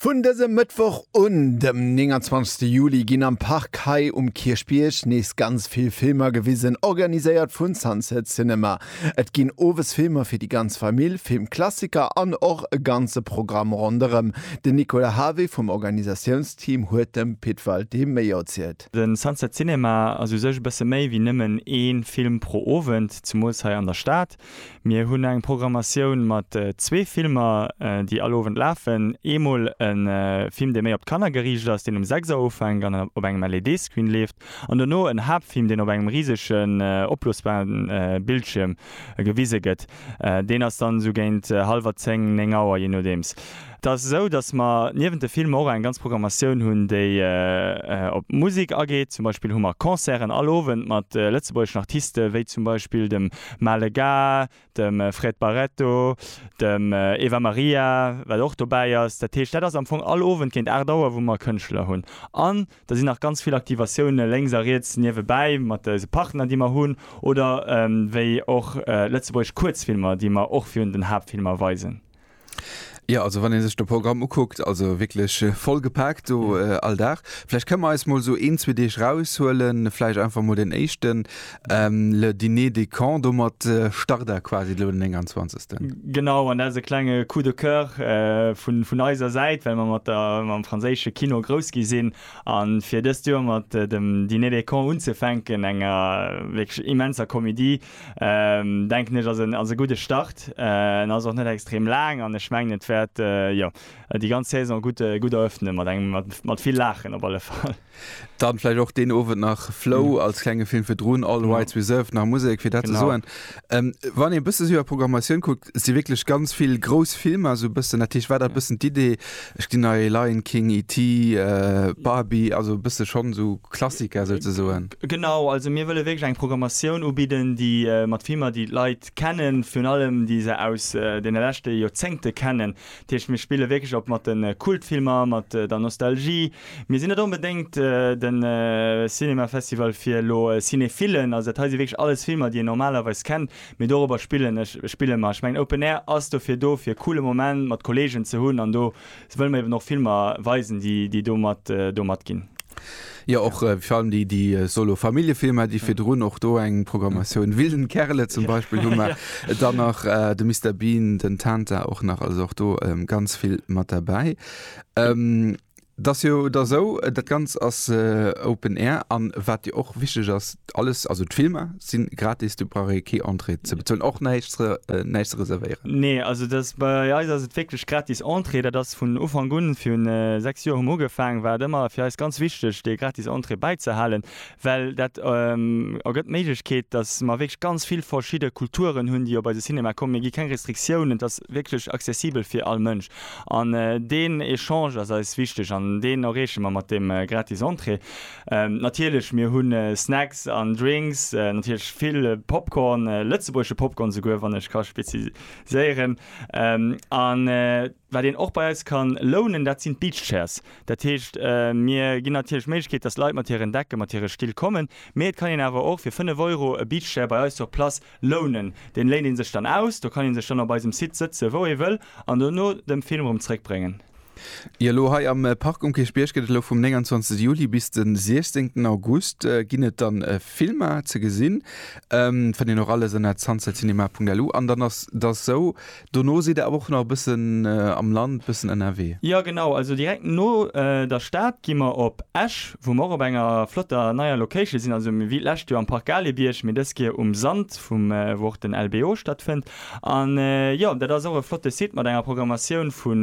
Vun dësem Mëttwoch un, dem 29 Juli, ginn am Park hei um Kierchbierg nees ganz vill Filmer gewisen, organiséiert vun Sunset Cinema. Et ginn owes Filmer fir déi ganz Famill, Filmklassiker an och e ganze Programm ronderëm. Den Nicolas Havé vum Organisatiounsteam huet dem Pit Walté méi erzielt. De Sunset Cinema ass u sech e bësse méi wéi nëmmen ee Film pro Owend, zemools hei an der Stad. Mir hunn eng Programmatioun mat zwee Filmer, déi all Owend lafen. Eemol e Film, dee méi op d'Kanner geriicht ass, deen um 6 Auer ufänkt an op engem LED-Screen leeft, an dono en Haaptfilm, deen op engem risegen, opblosbaren Bildschierm gewise gëtt. Deen ass dann esou géint hallwer zéng, néng Auer, jee nodeems. Et ass esou, datt mer niewent de Filmer och eng ganz Programmatioun hunn, déi op d'Musek ageet. Zum Beispill hu mer Concerten all Owend mat lëtzebuergeschen Artiste wéi zum Beispill dem Maale Gars, dem Fred Barreto, dem Eva Maria, wat och dobäi ass. Dat heescht, dat ass am Fong all Owend géint 8 Auer, wou mer Kënschtler hunn. An da sinn nach ganz vill Aktivatioune lénks a riets niewebäi mat eise Partner, déi mer hunn, oder wéi och lëtzebuergesch Kuerzfilmer, déi mer och virun den Haaptfilmer weisen. Jo, also wann ee sech de Programm ukuckt, also wierklech voll gepaakt do all Dag. Vläicht kënne mer eis mol esou een, zwee Deeg raushuelen, vläicht einfach mol deen éischten, le dîner des cons, domat start Der quasi elo den 29. Genau, an dat ass e klenge Coup de coeur vun eiser Säit, well mer mat mam franséische Kino grouss gi sinn a fir dëst Joer mat dem Dîner des cons unzefänken, enger wierklech immenser Komedie, denken ech ass en ass e gudde Start. En ass och net extrem laang an ech mengen et wäert jo déi ganz Saison gutt gutt erëffnen mat engem mat mat vill Laachen op alle Fall. Dann vläicht och deen Owend nach Flow als klenge Film virdrun, All Rights Reserved, nach Musek fir dat ze soen. Wann een e bësse sou iwwer d'Programmatioun kuckt, si wierklech ganz vill grouss Filmer sou e bëssen, dat heescht war dat e bëssen d'Idee, Ech ginn nei Lion King, E.T, Barbie, also e bësse schonn esou Klassiker souzesoen. Genau, also mir wëlle wierklech eng Programmatioun ubidden, déi mat Filmer, déi d'Leit kennen, virun allem déi se aus deene leschte Joerzéngte kennen. Dat heescht, mir spille wierklech op mat de Kultfilmer, mat der Nostalgie. Mir sinn net onbedéngt de Cinéma Festival fir elo Cinéphillen, also dat hei si wierklech alles Filmer, déi een normalerweis kennt, Mee dorobber spillen ech, spille mer. Ech mengen Open Air ass dofir do, fir e coole Moment mat Kolleegen ze hunn an do wëlle mer eben och Filmer weisen, déi do mat do mat ginn. Jo, och fir allem déi déi solo Familljefilmer, déi virdrun och do eng Programmatioun, Wilden Kerle zum Beispill hu mer, dann nach de Mister Bean, den Tanta och nach, also och do ganz vill mat derbäi. Et ass jo da sou, dat Ganzt ass Open Air an wat jo och wichteg ass, alles, also d'Filmer si gratis, do brauch ee kee Entrée ze bezuelen, och näischt ze näischt ze reservéieren? Nee, also dat ass, bei eis ass et wierklech gratis Entrée. Dat ass vun Ufank un, virun 6 Joer hu mer ugefaangen, war et ëmmer fir eis ganz wichteg, dee gratis Entrée bäizehalen, well dat ergëtt d'Méiglechkeet, datt mer wierklech ganz vill verschidde Kulturen hunn, déi op eise Cinema kommen. Mir gi keng Restriktiounen, et ass wierklech accessibel fir all Mënsch. An deen Echange ass eis wichteg an deen erreeche mer mat deem gratis Entrée. Natierlech, mir hu Snacks an Drinks, natierlech vill Popcorn, lëtzebuergesche Popcorn esouguer, wann ech ka speziséieren. Wat een och bei eis ka lounen, dat sinn d'Beach Chairs. Dat heescht, mir ginn natierlech d'Méiglechkeet, dass Leit mat hiren Decken, mat hire Still kommen, mee et kann een awer och fir 5 Euro e Beach Chair bei eis sur place lounen. Deen léint een sech dann aus, do kann een sech dann op eisem Site sëtzen, wou ee wëll, an do no dem Film erëm zréckbréngen. Jo, elo hei am Park um Kierchbierg gëtt et elo vum 29 Juli bis den 16 August ginn et dann Filmer ze gesinn. Fënnt een och alles ënner zanszelcinema.lu. An dann ass et sou, Dono sidd der awer och nach e bëssen am Land, bëssen ënnerwee. Jo genau, also direkt no der Stad gi mer op Esch, wou mer och op enger flotter neier Location sinn, also wéi d'lescht Joer am Parc Galebierg, mee dës Keer um Sand vum wou och den LBO stattfënnt. An jo, dat ass och e flotte Site mat enger Programmatioun vu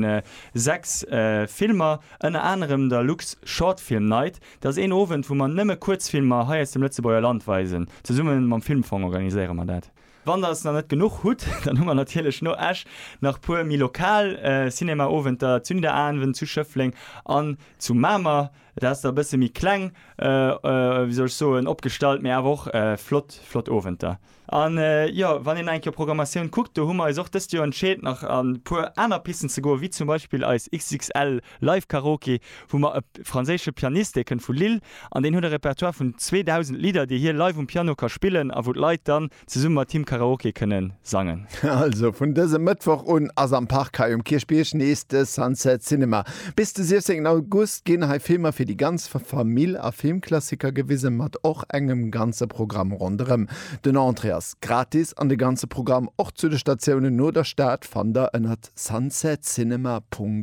6 Filmer, ënner anerem der Lux Short Film Night. Dat ass een Owend, wou mer nëmme Kuerzfilmer hei aus dem Lëtzebuerger Land weisen. Zesumme mam Filmfong organiséiere mer dat. Wann der s nach net genuch hutt, dann hu mer natierlech no Esch nach puer méi lokal Cinema-Owenter, Zünderabend zu Schëffleng an zu Mamer. Dat ass da e bësse méi kleng, wéi soll ech soen, opgestallt, mee awer och flott, flott Owenter. An jo, wann een nach eng Kéier Programmatioun kuckt, do hu mer eis och dëst Joer entscheet nach an e puer aner Pisten ze goen, wéi zum Beispill eis XXL Live Karaoke, wou mer e franséische Pianist, dee kënnt vu Lille an deen huet e Repertoire vun 2.000 Lidder, déi hie live um Piano ka spillen a wou d'Leit dann zesumme mat him Karaoke kënne sangen. Also vun dësem Mëttwoch un ass am Park hei um Kierchbierg nees de Sunset Cinema. Bis de 16 August ginn hei Filmer fir déi ganz Famill a Filmklassiker gewisen, mat och engem ganze Programm ronderëm. Den Entrée ass gratis an de ganze Programm och zu de Statiounen no der Stad fannt der ënnert sunsetscinema.lu.